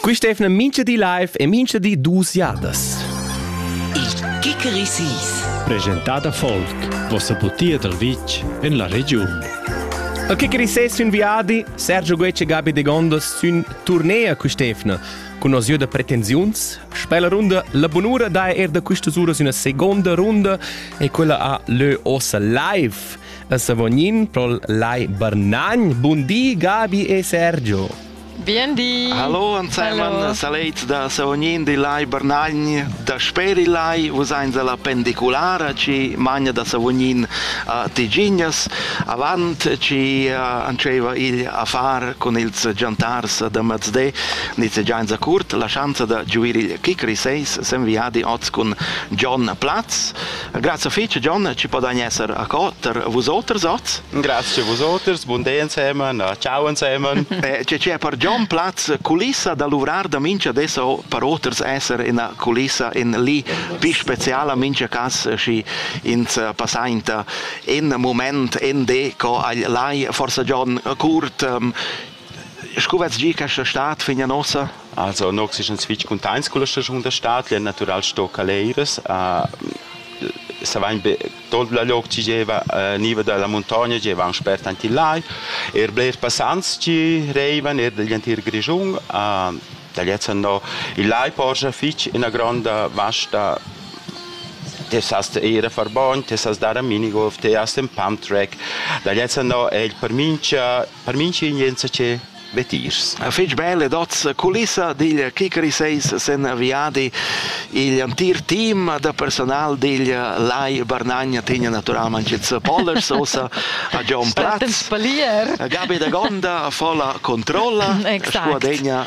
Quist eivna mincha di live e mincha di duos jadas. Il Kikerisis. Presentada Folk, vossa butia dal vitg en la regiun. A Kikerises sün viadi, Sergio Guec e Gabi de Gondas sün turnea quist'eivna cun osieu da pretensiuns. Sper la runda La Bunura dà er da quistas uras üna segonda runda e quella ha lö ossa live. Savognin prol Lai Barnagn. Bun di, Gabi e Sergio. Bien di. Hallo ansemen, saleit da Savognin di Lai Barnagn. Da speri Lai, vus eins alla pendiculara ci magna da Savognin a Tigignas. Avant ci anceva il affar con ils giantars da Mazdé, nizze gianza curt, la schanza da giuir il kick seis sen viadi oz cun John Platz. Grazie fece John, ci podani essere a cotter vus oters oz. Grazie a vus oters, buon day insieme, ciao insieme. Eh, c'è c'è per John Platz culissa da luvrar da mincha adesso per oters essere in culissa in lì più speciale mincha cas ci ins passainta in moment in de co agl lai forse John Kurt um, Scu vets gi questa stad fin a nossa? Also nog si sch'ins fitg cuntaints con la stagiun da stad, l'è natural sto caleires. Savain be tot la loc chi gieva niva da la muntogna gieva aunc spert aint il lai. Er blers passants chi reivan er digl entir Grischun. Da lezza no il lai porscha fitg ina gronda vasta te sast ir a far bogn, te sast dar a minigolf, te hast in pump track. Da lezza no è il per mincha Per minch'ingenza che vetiers. Fich bella dozza culissa digl Kikari 6 sen viadi. Il antir team da personal digl Lai Barnagna tegna naturalmente jetzt Pollers ossa a John Platz. Gabi da Gonda fa la controlla, scuadegna